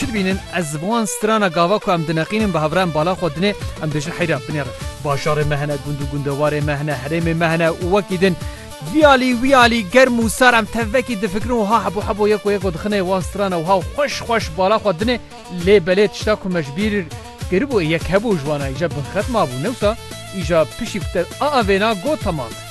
Çi dibînin? Ez ji bo wan strana gava ku em dineqînin bi hevrayên bala xwe dinê, em dê ji heyra binê re. Bajarê me hene, gund û gundewarê me hene, herêmê me hene û wekî din. Vî alî wî alî, germ û sar em tevvekî difikirin û ha hebo hebo yeko yeko dixinê wan strana û ha xweş xweş bala xwe dinê. Lê belê tişta ku me ji bîr kiribû ê yek hebû ji wan a îja binxet mabû. Ne wisa, îja piştî ku te aa vêna got temam e.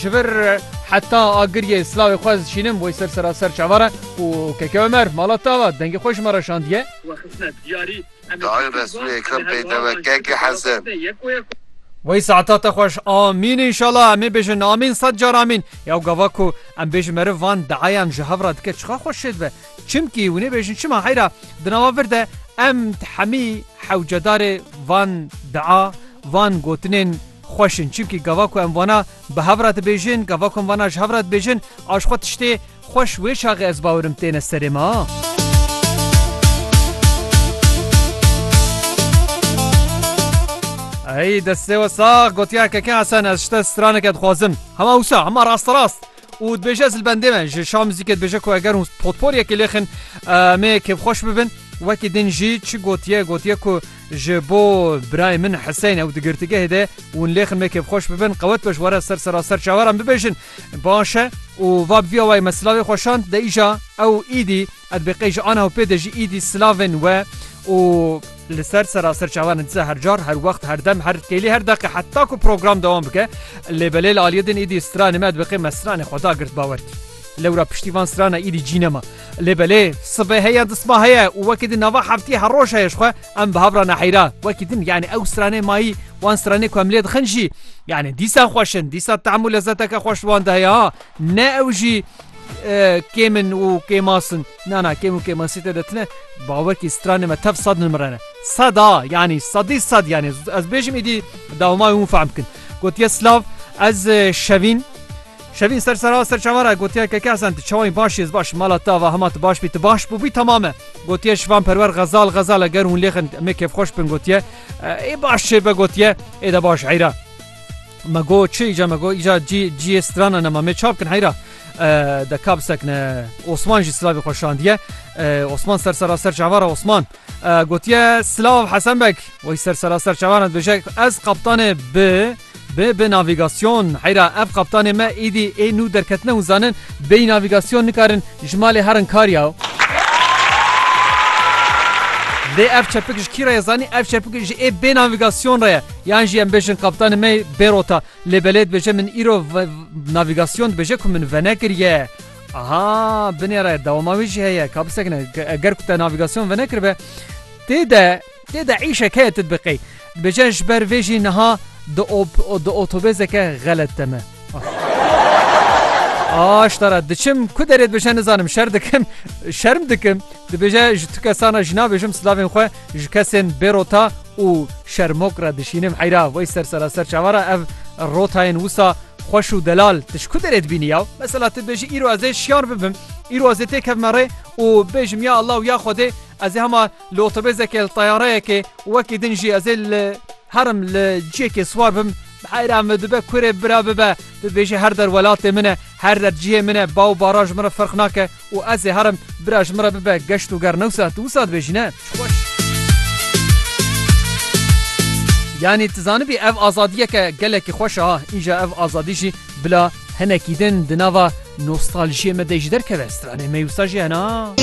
Ji vir heta agiriyê silavê xwe ez dişînim wê ser sera ser çavar e û keke Ömer mala tava dengê xwe ji me re şandiye. Dayê Resûlê Ekrem peyteve keke Hesen. Wey saeta te xweş Amîn înşala em ê bêjin Amîn sed car Amîn ya gava ku em bêjin meriv van deayan ji hev re dike çiqa xweş şêdibe. Çimkî hûn ê bêjin çima heyra di nava vir de em di hemî hewcedarê van dia, van gotinên xweş in. Çimkî gava ku em vana bi hev re dibêjin, gava ku em vana ji hev re dibêjin a ji xwe tiştê xweş wê çaxê ez bawirim têne serê me. Ey destê we sax gotiya keke Hesen ez ji te straneke dixwazim. Hema wisa, hema rasterast. û dibêje ez li bendê me ji şa muzîkê dibêje ku eger hûn potporyekê lêxin me kêfxweş bibin wekî din jî çi gotiye gotiye ku ji bo birayê min Hiseyn ew di girtîgehê de hûn lêxin me kêfxweş bibin qewet be ji were ser sera ser çaweran bibêjin baş e û va bi vî awayê me silavê xweşand de îja ew îdî Ev bi qey ji ana û pê de jî îdî silav in we û. Li ser sera serçavan dize her car, her wext, her dem, her kêlî, her deqe heta ku program dewam bike. Lêbelê li aliyê din îdî stranê me dibiqê me stranê xwe da girt bawer kî. Lewra piştî van strana îdî cî nema. Lêbelê sibê heye disma heye û wekî din nava heftiyê her roj heye ji xwe em bi hev re neheyra. Wekî din yanî ew stranê mayî wan stranê ku em lê dixin jî yanî dîsa xweş in, dîsa tehm û lezeteke xweş li wan de heye ha. Ne ew jî kêm in û kêmas in. Na na kêm û kêmasî te de tune bawer kî stranê me tev sad nimrene. Sada yanî sadî sad yanî ez bêjim îdî dawmayê hûn fehm bikin. Gotiye silav ez şevîn Şevîn ser sera ser çavara gotiye keke Hesen tu çawayî baş ez baş mala te va hema tu baş bî tu baş bûbî tamam e. Gotiye şivan perwer xezal xezal eger hûn lêxin me kêfxweş bin gotiye ê baş çê be gotiye ê de baş eyra. Me go çi îca me go îca cî cîyê strana nema mê çap kin heyra de kab sekne Osman jî silavê xwe şandiye Osman ser sera ser çavara Osman gotiye silav Hesen Beg wey ser sera ser çavara dibêje ez kaptanê bi bi bi navigasyon heyra ev kaptanê me îdî ê nû derketine hûn zanin bêyî navigasyon nikarin ji malê herin kar ya Lê ev çepik ji kî re ye zanî ev çepik ji ê bê navigasyon re ye Yan jî em bêjin kaptanê me bêrota lê belê dibêje min îro navîgasyon dibêje ku min venekiriye. Aha binê re dewama wî jî heye ka bisekine eger ku te navîgasyon venekiribe tê de tê de îşek heye tu dibê qey. Dibêje ji ber vê jî niha di di otobêzeke xelet de me. Aştara diçim ku derê dibêje nizanim şer dikim şerm dikim dibêje ji tu kesana jî nabêjim silavên xwe Ji kesên bê rota û şermok re dişînim heyra wey ser seraser çavan re ev rotayên wisa xweş û delal tu ji ku derê dibînî ya? Mesela tu bêjî îro ez ê şiyan bibim, îro ez ê tê kevime rê û bêjim ya Allah û ya Xwedê ez ê hema li otobêzekê li teyareyekê wekî din jî ez ê li herim li ciyekê siwar bim, Heyra me dibe kurê bira bibe, bibêje her der welatê min e, her der cihê min e, baw bara ji min re ferq nake û ez ê herim, bira ji min re bibe, geşt û ger newsa tu wisa dibêjî ne? Ji xwe. Yanî tu zanibî ev azadiyeke gelekî xweş e ha, îja ev azadî jî bila hinekî din di nava nostaljiyê me de jî derkeve, stranê me yê wisa jî hene ha.